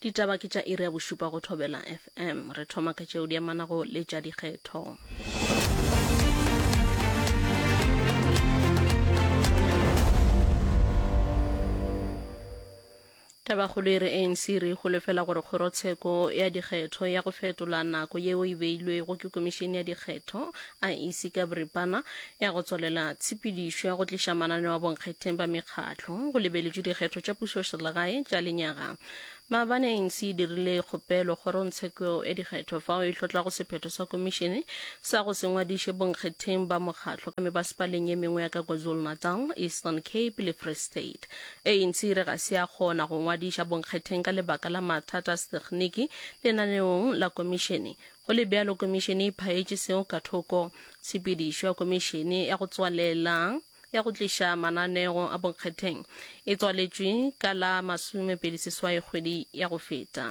Ditaba ke tša iri ya bošupa go Thobela FM. Re thoma ka tšeo di amanago le tša dikgetho. Tabakgolo e re ANC re e holofela gore kgorotsheko ya dikgetho ya go fetola nako yeo e beilwego ke komišene ya dikgetho a ise ka boripana ya go tswalela tshepedišo ya go tliša mananeo a bonkgetheng ba mekgatlo go lebeletšwe dikgetho tša pušoselegae tša lenyaga maabane anc e dirile kgopelo kgorongtsheko ya dikgetho fao e hlotlago sephetho sa komišene sa go se ngwadiše bonkgetheng ba mokgatlo ka mebasepaleng ye mengwe ya ka kwazulu-natal eastern cape le free state anc e re ga se ya kgona go ngwadiša bonkgetheng ka lebaka la mathata a setekniki lenaneong la komišene Go le bjalo, Komišene e phaetše seo ka thoko. Tshepedišo ya Komišene ya go Tswalela ya go Tliša Mananeo a Bonkgetheng e tswaletšwe ka la masomepedi seswai kgwedi ya go feta.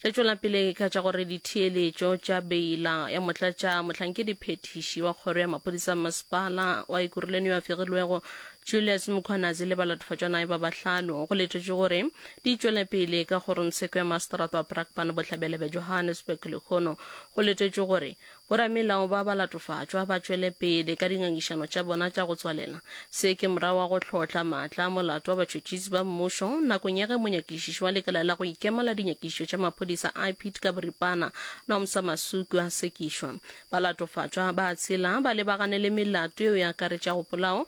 Re tšwela pele ka tša gore ditheeletšo tša beila ya motlatša mohlankedi phethiši wa kgoro ya maphodisa mmasepala wa Ekurhuleni yo a fegilwego Julius Mkhwanazi le balatofadjwanae ba bahlano go letetšwe gore Di tšwele pele ka go re Sekwee Mastrato a Brakpan Bohlabela bja Johannesburg lehono go letetšwe gore boramelao ba ba latofatšwa ba tšwele pele ka dingangišano tša bona tša go tswalela. Se ke morago ga go hlotla maatla a molato wa batšhotšhisi ba mmušo nakong ya ge monyakišiši wa lekala la go ikema la dinyakišišo tša maphodisa IPID ka boripana Nomsa Masuku a sekišwa. Balatofatšwa ba tshela ba lebagane le melato yeo e akaretšago polao,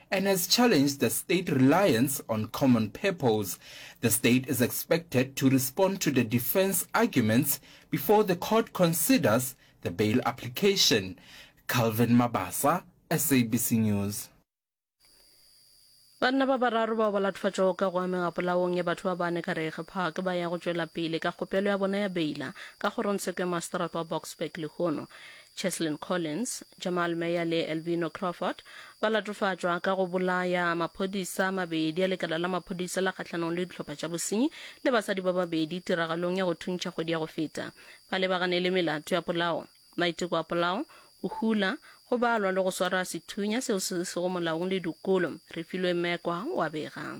and has challenged the state reliance on common purpose. The state is expected to respond to the defense arguments before the court considers the bail application. Calvin Mabasa, SABC News. banna ba bararo bao ba lathofatšwago ka go amega polaong ya batho ba bane ka rege park ba ya go tšwela pele ka kgopelo ya bona ya beila ka kgorongtsheko ya maseterata wa boksburg lehono Cheslin Collins, Jamal Meyer le Elvino Crawford ba latofatšwa ka go bolaya maphodisa a mabedi a lekala la maphodisa la kgahlanong le dihlopha tša bosenyi le basadi ba babedi tiragalong ya go thuntšha kgwedi ya go feta. Ba lebagane le melato ya polao, maiteko a polao, go hula, go balwa le go swara sethunya seo se sego molaong le dikolo. Refilwe Mekwa o a bega.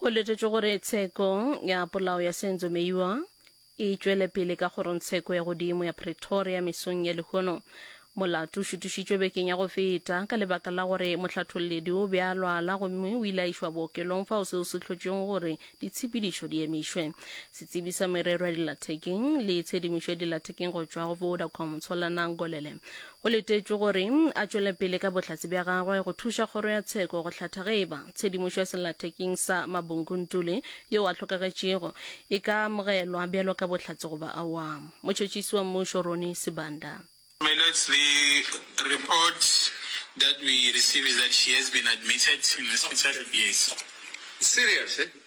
Go letetšwe gore tsheko ya polao ya Senzo Meyiwa e tšwele pele ka kgorongtsheko ya godimo ya Pretoria mesong ya lehono. Molato o šutišitšwe bekeng ya go feta ka lebaka la gore mohlatholledi o be a lwala gomme o ile a išwa bookelong fao seo se hlotšwego gore ditshepedišo di emišwe. Setsebi sa merero ya dilathekeng le tshedimošo ya dilathekeng go tšwa go Vodacom, Tsholanang Golele, Go letetšwe gore a tšwele pele ka bohlatse bja gagwe go thuša kgoro ya tsheko go hlatha ge e ba tshedimošo ya sellathekeng sa Mabunguntule yo a hlokagetšego e ka amogelwa bjalo ka bohlatse goba awa. Motšhotšhisi wa Mmušo Ronnie Sibanda. Mellots, the report that we receive is that she has been admitted in hospital, yes. Serious, eh?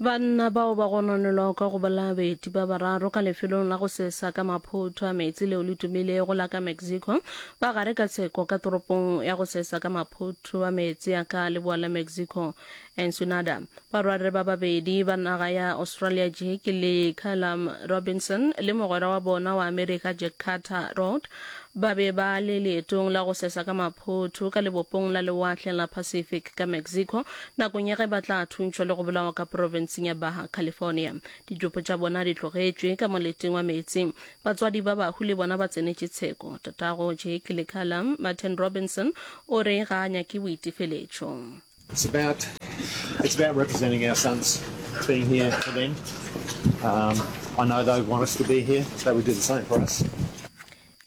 Banna bao ba gononelwago ka go bolaya baeti ba bararo ka lefelong la go sesa ka maphotho a meetse leo le tumilego la ka Mexico ba gare ka tsheko ka toropong ya go sesa ka maphotho a meetse ya ka leboa la Mexico, Ensenada. Barwarre ba babedi ba naga ya Australia Jake le Callum Robinson le mogwera wa bona wa America Jack Carter Road ba be ba le leetong la go sesa ka maphotho ka lebopong la lewatle la Pacific ka Mexico Nakong ya ge ba tla thuntšhwa le go bolawa ka profenseng ya Baja California, ditšopo tša bona di tlogetšwe ka moleting wa meetse. Batswadi ba bahu le bona ba tsenetše tsheko. Tatago Jake Lekala, Martin Robinson, o re ga a nyake boitefeletšo. It's about it's about representing our sons being here for them. Um, I know they want us to be here. They would do the same for us.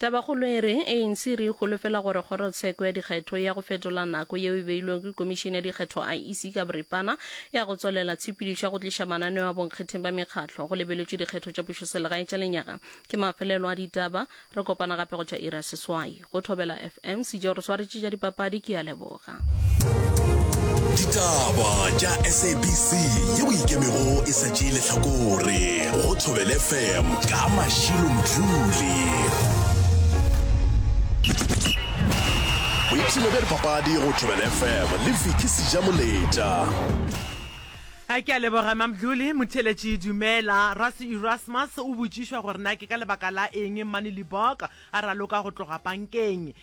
Tabakgolo e re, ANC e re e holofela gore kgorotsheko ya dikgetho ya go fetola nako yeo e beilwego ke Komišene ya Dikgetho, IEC, ka boripana ya go tswalela tshepedišo ya go tliša mananeo a bonkgetheng ba mekgatlo go lebeletšwe dikgetho tša pušoselegae tša lenyaga. Ke mafelelo a ditaba. Re kopana gape go tšwa iri ya seswai. Go Thobela FM, Sejo re swaretše tša dipapadi. Ke a leboga. ditaba tša sabc ye o ikemego e sa tšee lehlakore go thobele fm ka mašilo mdluli boipshino bja dipapadi go thobele fm le viki seja moletša a ke a leboga mamdluli motheletši dumela rasi erasmus o botšišwa gore na ke ka lebaka la eng mmane liboka a raloka go tloga pankeng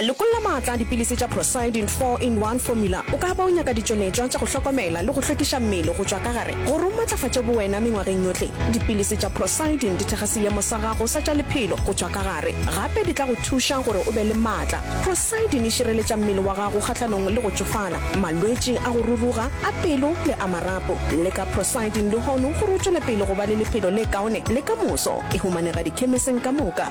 Lekolla maatla a dipilisi tša Procyidin 4 in 1 Formula. O ka ba o nyaka ditšonetšwa tša go hlokomela le go hlwekiša mmele go tšwa ka gare gore o matlafatše bowena mengwageng yohle. Dipilisi tša Procyidin di thekga seemo sa gago sa tša lephelo go tšwa ka gare. Gape di tla go thuša gore o be le maatla. Procyidin e šireletša mmele wa gago kgahlanong le go tšofala, malwetši a go ruruga, a pelo le a marapo. Leka Procyidin lehono gore o tšwele pele go ba le lephelo le kaone le ka moso. E humanega dikhemeseng ka moka.